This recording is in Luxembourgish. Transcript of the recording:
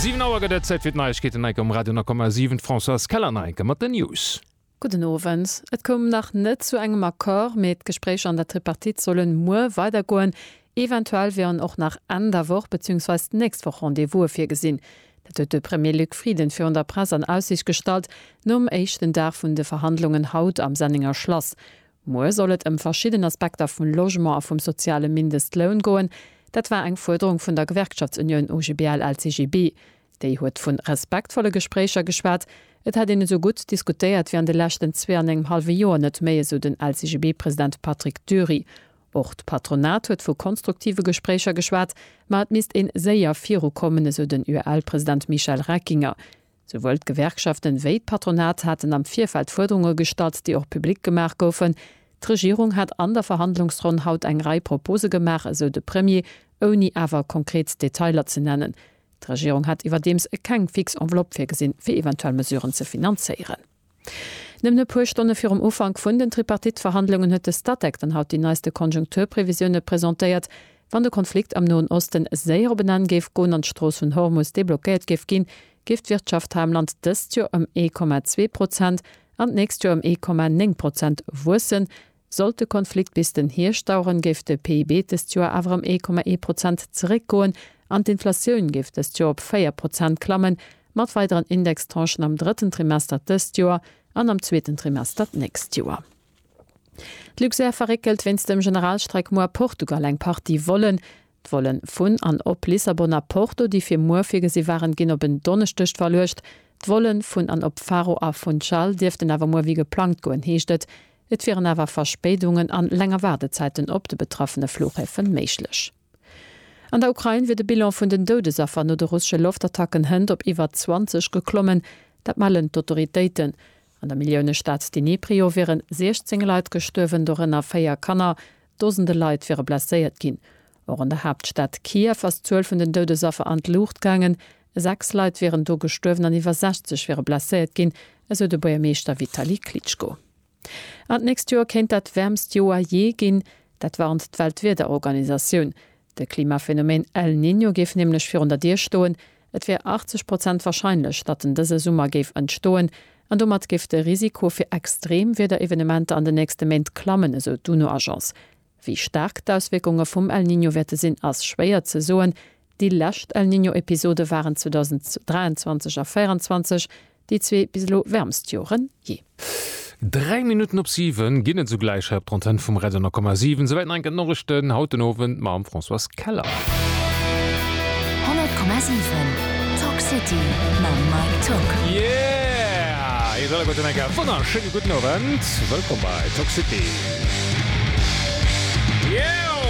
Siwen Auer gëtt et, Zäit fir d'Neiegkeeten enke um Radio 9,7. D'Françoise Keller nach enke mat den News. Gudden Owend. Et koum nach net zu engem Accord, mee d'Gespréicher an der Tripartite solle muer weidergoen. Eventuell wieren och nach Enn der Woch bezüungsweis d'nächst Woch Rendez-vouse virgesinn. Dat huet de Premier Luc Frieden virun der Press an Aussiicht gestallt nom éischten Dag vun de Verhandlungen haut am Sennenger Schlass. Muer soll et ëm verschidden Aspekter vum Logement a vum soziale Mindestloun goen. Dat war eng Fuerderung vun der Gewerkschaftsunioun OGBL-LCGB. Déi huet vu respektvolle Gespréicher geschwat. Et hätt een esou gutt diskutéiert wéi an de leschten zwee an engem hallwe Joer net méi, esou den LCGB-President Patrick Dury. Och d'Patronat huet vu konstruktive Gespréicher geschwat, ma et misst ee séier virukommen, esou den UEL-President Michel Reckinger. Souwuel d'Gewerkschaften wéi d'Patronat haten am Virfeld Fuerderunge gestallt, déi och public gemaach goufen. D'Regierung hat an der Verhandlungsronn haut eng Rei Propose gemaach, esou de Premier, ouni awer konkret Detailer ze nennen. D'Regierung hätt iwwerdeems keng fix Enveloppe virgesinn, fir eventuell Mesuren ze finanzéieren. Nëmmen e puer Stonne virum Ufank vun den Tripartite-Verhandlungen huet de Statec dann haut déi neiste Konjunkturprevisioune presentéiert. Wann de Konflikt am Noen Osten séier op en Enn géif goen an d'Strooss vun Hormus deblockéiert géif ginn, géif d'Wirtschaft hei am Land dëst Joer ëm ee Komma zwee Prozent an d'nächst Joer ëm ee Komma néng Prozent wuessen, Sollt de Konflikt bis den Hierscht daueren, géif de PIB dëst Joer awer ëm ee Komma ee Prozent zeréckgoen an d'Inflatioun géif dëst Joer op véier Prozent klammen, mat weideren Indextranchen am drëtten Trimester dëst Joer an am zweeten Trimester d'nächst Joer. D'Luxair verréckelt wéinst dem Generalstreik muer Portugal eng Partie Vollen. D'Volen vun an op Lissabon a Porto, déi fir muer virgesi waren, ginn op en Donneschdeg verluecht. D'Volen vun an op Faro a Funchal dierften awer muer wéi geplangt goen, heescht et. Et wieren awer Verspéidungen an länger Waardezäiten op de betraffene Flughäfe méiglech. An der Ukrain wier de Bilan vun den Doudesaffer no de russesche Loftattacken hënt op iwwer 20 geklommen. Dat mellen d'Autoritéiten. An der Milliounestad Dnipro wiere 16 Leit gestuerwen, dorënner véier Kanner. Dosende Leit wiere blesséiert ginn. Och an der Haaptstad Kiew ass d'Zuel vun den Doudesaffer an d'Luucht gaangen. Sechs Leit wieren do gestuerwen an iwwer 60 wiere blesséiert ginn, esou de Buergermeeschter Vitali Klitschko. An d'nächst Joer kéint dat wäermst Joer jee ginn. Dat warnt d'Weltwiederorganisatioun. De Klimaphenomen El Niño géif nämlech virun der Dier stoen, et wier 80 Prozent warscheinlech, datt en dëse Summer géif entstoen, an domat géif de Risiko fir Extremwiederevenementer an den nächste Méint klammen, esou d'UNO-Agence. Wéi staark d'Auswierkunge vum El Niño wäerte sinn, ass schwéier ze soen. Déi lescht El Niño-Episode waren 2023 a 2024, Déi zwee bis elo wärmst Joren je. Dräi Minutten op siwen ginn et sougläich hei op der Antenn vum Radio 10,7. Souwäit nach eng Kéier d'Norichten haut den Owend mam Françoise Keller. 100,7 Talk City mam Mike Tock. Yeah! Eis alleguerten eng Kéier e wonnerschéine gudden Owend. Wëllkomm bei Talk City. Yeeow!